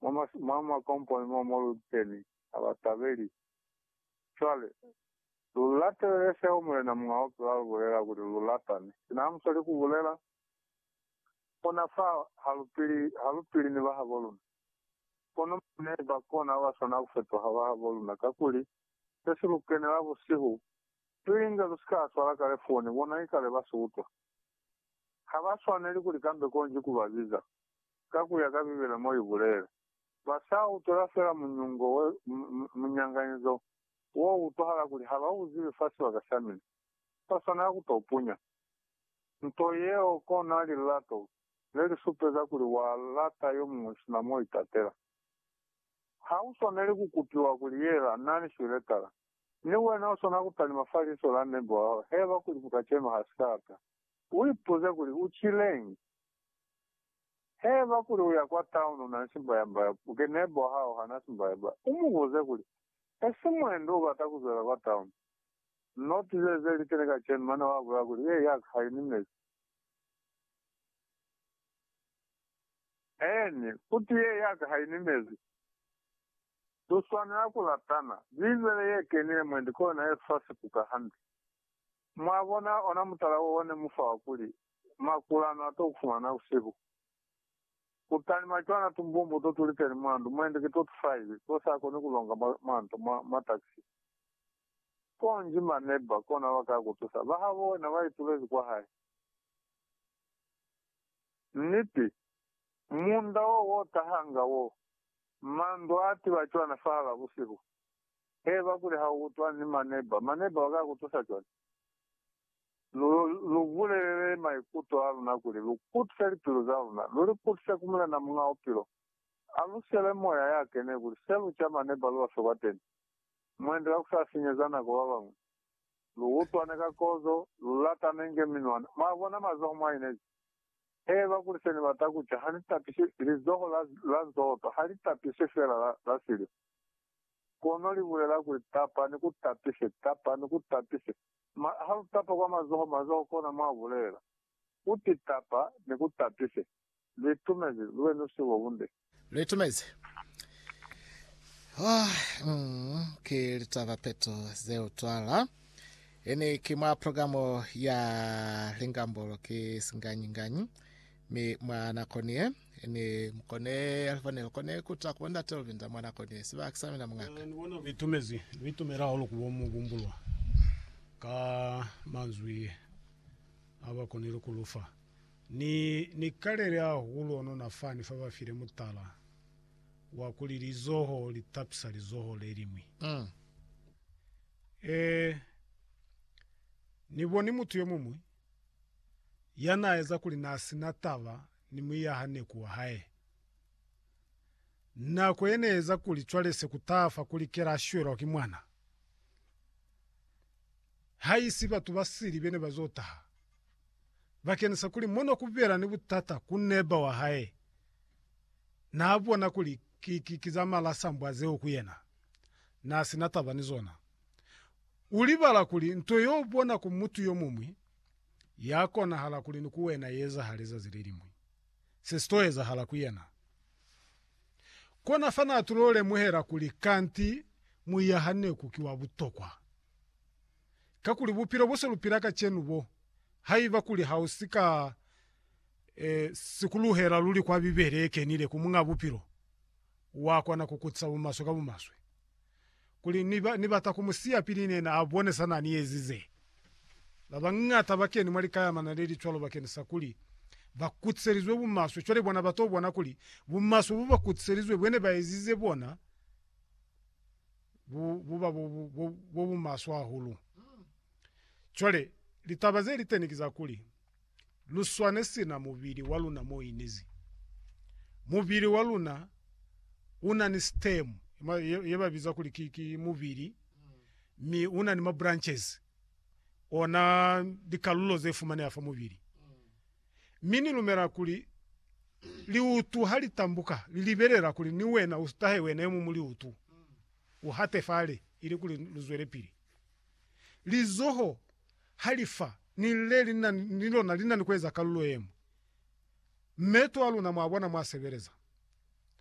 mwa makomponi mo mo lu keni, ha ba tabeli. Cwale, lu latelele seo Mulena Muñ'a Bupilo a lu bulela, kuli lu ratane. Sina ha mu sweli ku bulela, kona fa ha lu pili, ha lu pili ni bahabo luna. Kono mwa ne ba kona ba swana ku fetuha bahabo luna, kakuli, se si lu kenela busihu, pili inge lu si ka swala kale foni, bona ikale ba si utwa. Ha ba swaneli kuli kambe konji ku ba biza. ka ku ya ka Bibele mo i bulele. Ba sa utwela fela munyungo we, munyanganyizo wo utwahala kuli ha ba u zibi fa sibaka sa mina. Ba swanela ku to punya nto yeo kona lilato le li supeza kuli wa lata yo muñwi sina mo itatela. Ha u swaneli ku kupiwa kuli yela na ni swiletala. Ni wena u swanela ku talima fa liso la neighbor wa hao heba kuli buka cema ha si ka lata. U ipuze kuli, U cileñi? He ba kuli uya kwa town una nsimba ya mba u ke neighbor wa hao hana simba ya ba u mubuze kuli esi muendo ubata kuzwela kwa town not ze ze likene kacenu mane wa bulela kuli ye yaka ha ini mezi and uti ye yaka ha ini mezi lu swanela ku latana bible ye kenile mwendi ke ona ye fa sikuka hande Mwabona, ona mutala wo one mufa wa kuli, Makula ano ato kufumana busihu. Kutalima cwana tumbumbu to tuliteni mwa ndu, mwende ki to tufaiwi, to sa koni kulonga mwa, mwa nto, mwa, mwa taxi. Konji ma neighbor kona ba ka kutusa, ba habo wena ba itulezi kwa hae. Niti. Munda wo wo tahanga wo, mandu a tiba cwana fahal'a busihu. Heba kuli ha u utwa ni maneba, maneba ba ka ku tusa cwañi? Lu, lu bulelele maikuto a luna kuli lu kutise lipilu za luna, lu li kutise ku Mulena Muñ'a Bupilo. A lu sele Moya ya kene kuli se lu ca maneba lu aswe kwateni, mwendi ka ku sa sinyeza nako ba bañwi. Lu utwane ka kozo, lu latane inge minwana. Mwa bona mazoho mwa inezi? Heba kuli se ni bata ku ca ha ni tapisi, lizoho la, la nzoto ha li tapisi fela la, la siliva. Kono li bulela kuli, Tapa, ni ku tapise, tapa, ni ku tapise. Ma, ha lu tapa kwa mazoho, mazoho, kona mwa bulela. U ti, Tapa, ni ku tapise. Lu itumezi, lu be ni busihu bo bunde. Lu itumezi. Oh, mm, ki litaba peto ze utwala. Ini ki mwa programu ya Lingambolo, ki singanyi-nganyi. Mi mwa nako ni ye, ni mukone ya li fanelo kone ku ta ku bo Ndate Olvinda mwa nako ni ye. Siba ki sa mina mungaka. Ni bona ku itumezi, ni itumela hahulu ku bo mu kumbulwa ka manzwi a ba konile ku lu fa. Ni, ni kalele hahulu ono na fani fa ba file mutala wa kuli lizoho li tapisa lizoho le liñwi. E, ni boni mutu yo muñwi ya n'a eza kuli n'a si na taba ni muiyaha neku wa hae. Nako ye ne eza kuli cwale se ku taha fa ku likela a shwelwa ki mwana. Ha i si batu ba sili be ne ba z'o taha. Bakenisa kuli mo no ku bela ni butata ku neba wa hae, n'a bona kuli ki za malasambwa zeo ku yena n'a si na taba ni zona. Ulibala kuli nto yobona ku mutu yomuñwi yakonahala kuli ni ku wena iezahale zazi leliñwi. Se si to ezahala ku yena. Kona fa na tulo lemuhela kuli kanti muiahaneku ki wa butokwa. Kakuli bupilo bo se lu pila kacenu bo, haiba kuli ha u si ka sikuluhela luli kwa Bibele ye kenile ku Muñ'a Bupilo, wa kona ku kutisa bumaswe ka bumaswe. kuli ni, ni bata ku mu siya pili nena a bone sa na ni ezize. Ba bañata ba keni mwa likayamana le li cwalo bakeni sa kuli ba kutiselizwe bumaswe. Cwale bona ba to bona kuli bumaswe bo ba kutiselizwe bwe ne ba ezize bona bu, bu ba bo, bo, bo bumaswe hahulu. Cwale, litaba ze li teni ki za kuli, lu swane sina mubili wa luna mo inizi. Mubili wa luna u na ni stem, ye ba biza kuli ki, ki mubili, mi u na ni ma branches, ona likalulo ze fumaneha fa mubili. Mi ni lumela kuli liutu ha li tambuka, li libelela kuli ni wena u tahe wena yomuñwi liutu, u hate fale, ili kuli lu zwelepili. Lizoho. Halifa ni lile lina ni lona linani kueza kalulo yemwi. Meto aluna mwabona mwasebeleza.